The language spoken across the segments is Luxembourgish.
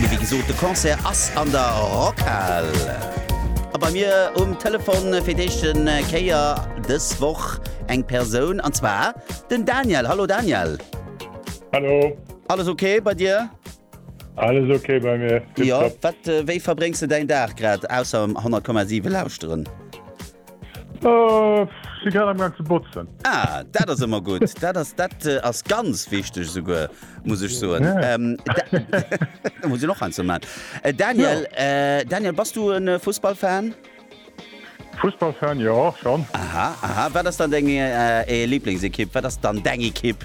Mee wéi gesot, de Concert ass an der Rockhal. A bei mir um Telefon fir d'éischte Kéier dës Woch eng Persoun, an zwar den Daniel. Hallo Daniel. Hallo. Alles ok bei dir? Alles ok bei mir. Tipptopp. Jo, wat, wéi verbréngs de däin Dag grad, ausser 100,7 lauschteren? Ech si grad am Gang ze botzen. Ah, dat ass ëmmer gutt. Dat ass, dat ass ganz wichteg esouguer, muss ech soen. Da muss een och eins mat. Daniel, Daniel, bass du e Fussballfan? Fussballfan, jo, schonn. Aha, aha. Wat ass dann deng Lieblingsekipp? Wat ass dann deng Ekipp?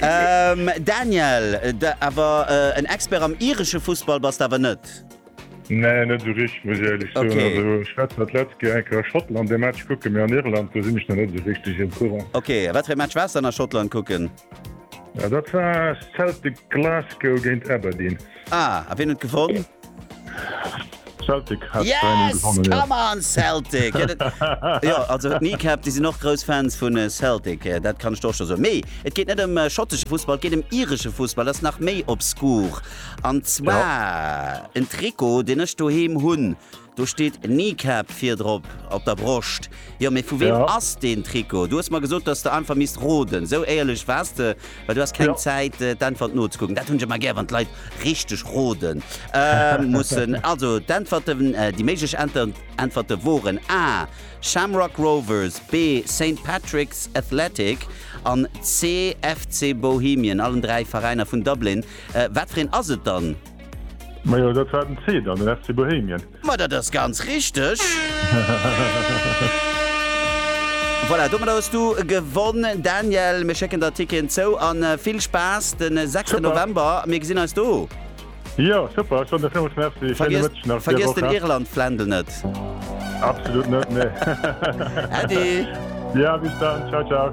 ähm, Daniel, de, awer äh, en Expert am iresche Fußball bass awer net. Nee, net so rich muss ehrlich okay. so, letzte enker Schottland de Match kucke mir an Irland du sinn ich net so richtig im Kurrang. Okay, wat fir Match was an der Schottland kucken? Ja, dat war Celtic Glasgow géint Aberdeen. Ah, a wien huet gewonn? Celtic hat 3-0 Yes! gewonnen, ja. Come on, Celtic! Jo, dat, jo, also d'Kneecap, déi sinn och grouss Fans vun Celtic, dat kann ech der och scho soen. Mee et geet net ëm schottesche Fussball, et geet ëm iresche Fussball, dat ass nach méi obskur. An zwar en Trikot, deen ech doheem hunn. Do steet Kneecap virdrop op der Broscht. Jo, mee vu weem ass deen Trikot? Du hues mer gesot, datt s de einfach misst roden. Esou éierlech waars de, well du has keng Zäit, d'Äntwert nozekucken. Dat hunn ech ëmmer gär, wann d'Leit richteg rode mussen. Also, d'Äntwerten, déi méiglech Äntwerte woren, A, Shamrock Rovers, B, Saint Patrick's Athletic an C, FC Bohemian. Allen dräi Veräiner vun Dublin. Wat fir een ass et dann? Majo dat war den Zeh dann den FC Bohemien. Ma dat ass ganz richteg. Voilà, domadder hues du gewonn Daniel. Mir schécken der Ticketen zou an vill Spaass den 6 November. Mir gesinn eis do. Jo super, ech soen der villmools Merci. Schéine Mëtteg nach. Vergiess den Irlandfländel net. Absolut net, nee. Äddi. Jo bis dann, ciao ciao.